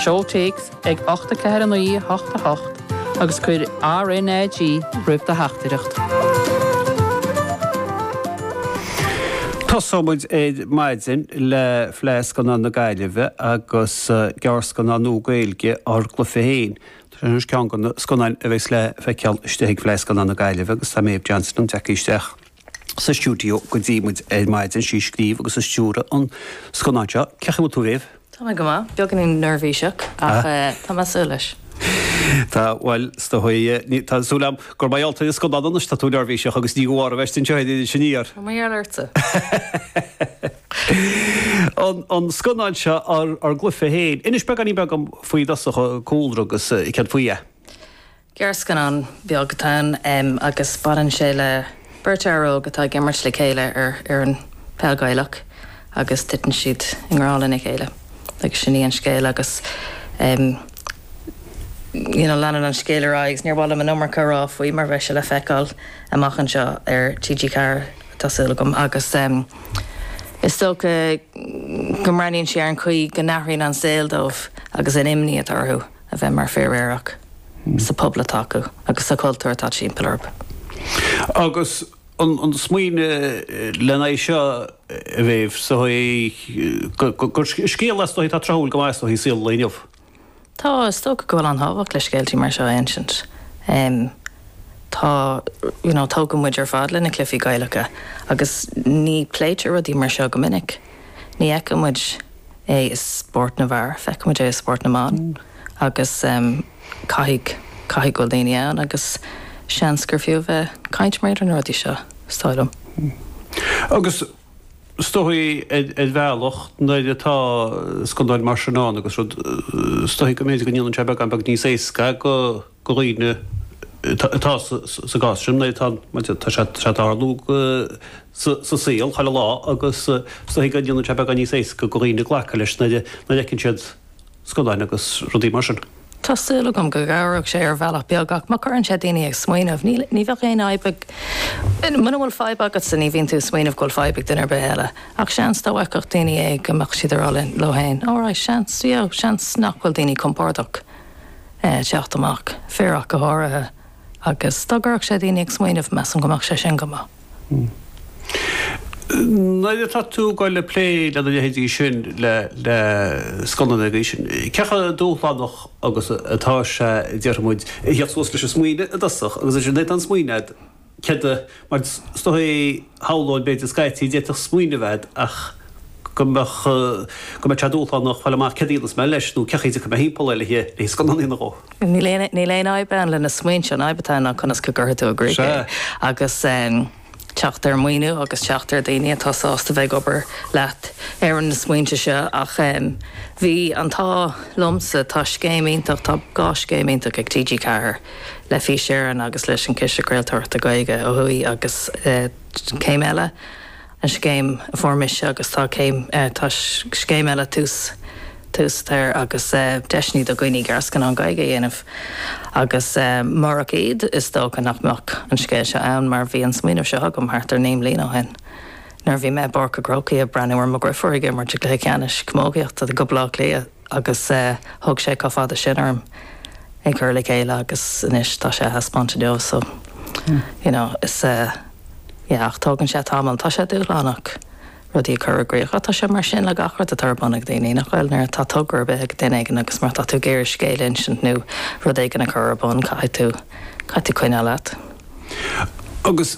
Seol téacs ag 849888 agus cuir RNAG roimh do theachtaireacht. Tosóidh muid ar maidin le Fleadh Scannán na Gaillimhe agus gearrscannán nua Gaeilge ár gcluiche féin. Seo í ceann de na scannáin a bheidh le feiceáil istigh ag Fleadh Scannán na Gaillimhe agus tá Méabh Johnston tar éis teacht isteach. sa stiúideo go dtí muid ar maidin, is í a scríobh agus a stiúraigh an scannán seo. Cén chaoi a bhfuil tú, a Mhéabh? Tá mé go maith. Beagáinín neirbhíseach ach tá mé saor leis. Tá, bhuel, tá súil agam gur maith leat an scannán anois. Tá tú neirbhíseach agus ní gá duit a bheith ansin, seo é sin iar. Tá mo gheall ortsa. An scannán seo ár gcluiche féin. Inis beagáinín beag dom faoi i dtosach, an cúlra agus céard faoi é. gearrscannán beag atá ann agus baineann sé le beirt fhear óg atá ag imirt le chéile ar fhoireann peil Ghaelach agus titeann siad i ngrá lena chéile agus sin í an scéal agus you know leanann an scéal ar aghaidh agus níor mhaith liom an iomarca rá faoi mar bheidh sé le feiceáil amach anseo ar TG4 tá súil agam agus is dócha go mbreathnaíonn sé ar an chaoi go n-athraíonn an saol dóibh agus an imní atá orthu. a bheith mar fir aerach sa pobal atá acu agus sa chultúr atá timpeall orthu. Agus an smaoineamh len aghaidh seo, a Mhéabh, sa chaoi gur scéal is dóigh atá tráthúil go maith is dóigh i saol an lae inniu. Tá, is dócha go bhfuil an-tábhacht le scéaltaí mar seo a insint. Tá, you know, tógadh muid ar fad le na cluifí Gaelacha agus ní pléitear rudaí mar seo go minic. Ní fheiceann muid. é i spórt na bhfear, feicimid é i spórt na mban agus caithfidh, caithfidh go bhfuil daoine ann agus seans gur fiú a bheith ag caint mar gheall ar na rudaí seo, is dóigh liom. Agus is dóigh, ar bhealach, nuair atá scannáin mar sin ann agus rud, is dóigh go mb'fhéidir go ndéanann sé beagán beag níos éasca go, do dhaoine atá sa gcás sin, nó tá sé ag tarlú sa saol chuile lá agus go ndéanann sé beagán níos éasca do dhaoine glacadh leis nuair a fheiceann siad scannáin agus rudaí mar sin. Tá súil agam go gcabhróidh sé ar bhealach beag, ach má chuireann sé daoine ag smaoineamh, níl, ní bheadh aon fhadhb ag, muna bhfuil fadhb agatsa ní bhíonn tú ag smaoineamh go bhfuil fadhb ag duine ar bith eile. Ach seans dá bhfeicfeadh daoine é go mbeadh siad ag rá leo féin, alright, seans, you know, seans nach bhfuil daoine compordach. teacht amach, fir ach go háirithe, agus dá gcuirfeadh sé daoine ag smaoineamh, measaim go mbeadh sé sin go maith. Nuair atá tú ag dul ag plé le na leithéidí sin, le scannán den leithéidí sin, cé chomh dúshlánach agus atá sé, déarfaidh muid, a thíocht suas leis an smaoineamh i dtosach agus ansin nuair atá an smaoineamh agat, Céard é, mar is dócha, shamhlóinn, b'fhéidir, scaití, d'fhéadfadh smaoineamh a bheith agat ach go mbeadh, go mbeadh sé dúshlánach fáil amach céard a dhéanfas mé leis, nó cén chaoi a dtiocfaidh mé thimpeall air, le scannán a dhéanamh dhó. Níl aon fhadhb ann leis na smaointe, an fhadhb atá ann ná conas go gcuirfidh tú i gcrích é. Agus teacht ar mhaoiniú agus teacht ar dhaoine atá sásta bheith ag obair leat ar na smaointe seo. Ach bhí an t-ádh liomsa, tá scéim iontach, tá dhá scéim iontach ag TG4, le Fís Éireann agus leis an Chiste Craoltóireachta Gaeilge ó thuaidh agus céim eile an scéim a fuair mise agus tá céim tá scéim eile tús tús toir agus deiseanna do dhaoine gearrscannán Gaeilge a dhéanamh agus murach iad is dócha nach mbeadh an scéal seo ann mar bhí an smaoineamh seo agam thart ar naoi mbliana ó shin nuair bhí mé i bPáirc an Chrócaigh ag breathnú ar mo dheirfiúr ag imirt i gcluiche ceannais camógaíochta do Bhaile Átha Cliath agus thug sé chomh fada sin orm é a chur le chéile agus anois tá sé á thaispeáint inniu so you know is yeah ach tógann sé tamall, tá sé dúshlánach rudaí a chur i gcríoch ach tá sé mar sin le gach rud atá ar bun ag daoine nach bhfuil, nuair atá togra ar bith ag duine éigin agus má tá tú ag iarraidh scéal a insint nó rud éigin a chur ar bun caithfidh tú, caithfidh tú coinneáil leat. Agus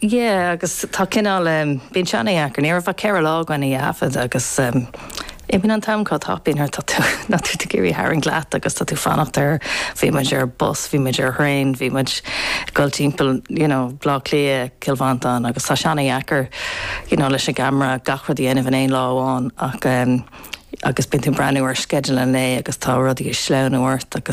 Yeah, agus tá cineál, em, bíonn sé an-dheacair, ní raibh ach ceithre lá againn í a thaifead agus, em, imíonn an t-am chomh tapa, you know, tá tú, tá tú ag iarraidh tarraingt leat agus tá tú ag fanacht ar, bhí muid ar bus, bhí muid ar thraein, bhí muid ag dul timpeall, you know, Baile Átha Cliath, Cill Mhantáin agus tá sé an-dheacair, you know, leis an gcamera gach rud a dhéanamh in aon lá amháin ach, em, agus bíonn tú ag breathnú ar sceideal an lae agus tá rudaí ag sleamhnú ort agus